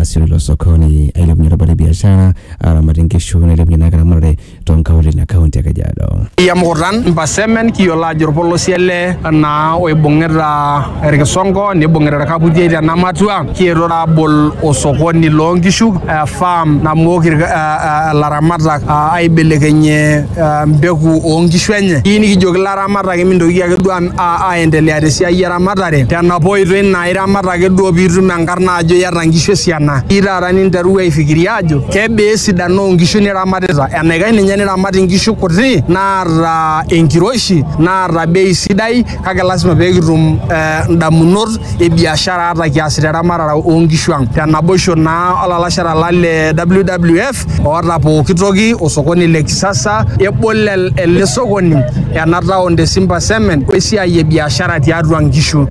asiru ilo sokoni ailepunye erubata e biashara, aaramatie nkishu nailepunye naa eramatare too nkaulele ina kaunti e Kajiado. Iya mukutan mpasemen kiyiolo ajo orpolosie ele naa oibung'ita irkisongo nibung'ita irkaputiei tena matua kietuo taa abol osokoni loonkishu eh, farm namook irk- eh, eh, ilaramatak ah, aibelekenyie eh, mbeku oonkishu enye kiyieu nikijoki ilara- iramat ake mintoki ake duo aendelea tesiai eramatare tenapa oitoi naa iramat ake duo piitum enkarna ajo iyata nkishu esiana ii taata ninterua aifikiria ajo kebaa esidano onkishu niramatita enaikash ninye niramat inkishu kuti naata enkiroshi naata bei sidai kake lasima pekitum eh, indamunot e biashara ata kiasita eramatare onkishu ang tenaboisho naa olalashara lang le WWF oota pooki toki osokoni le kisasa ebol el- ele sokoni ena taon te Simba Cement wesiai e biashara tiatua nkishu.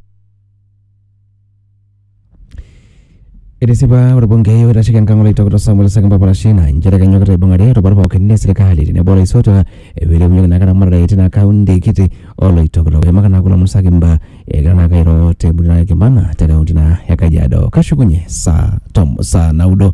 Etisipa orbungei oitasheki enkang oloitokito Samuel Sekemba Parashina nchere kenyokita aibung'are rubat pookin le serikali tenebo olaisotuak peilepunyeki naa eramatare tina kaunti kiti oloitokito. Eimaka naa kulo omon Sekemba egira naa airo te Murray Kimana te kaunti naa e Kajiado. Kashukunye saa tom saa naudo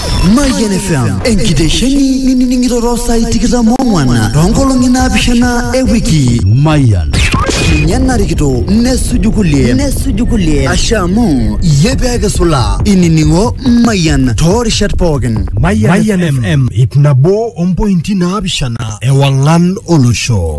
Mayian FM enkitesheni nining'ito too saai tikitam oong'wan too nkolong'i naapishana e wiki. Mayian. Ninye narikito nesuju kulie nesuju kulie ashe amu iyie pee kisula inining'o Mayian too rishat pookin. Mayian FM ip nabo ompointi naapishana ewang'an olosho.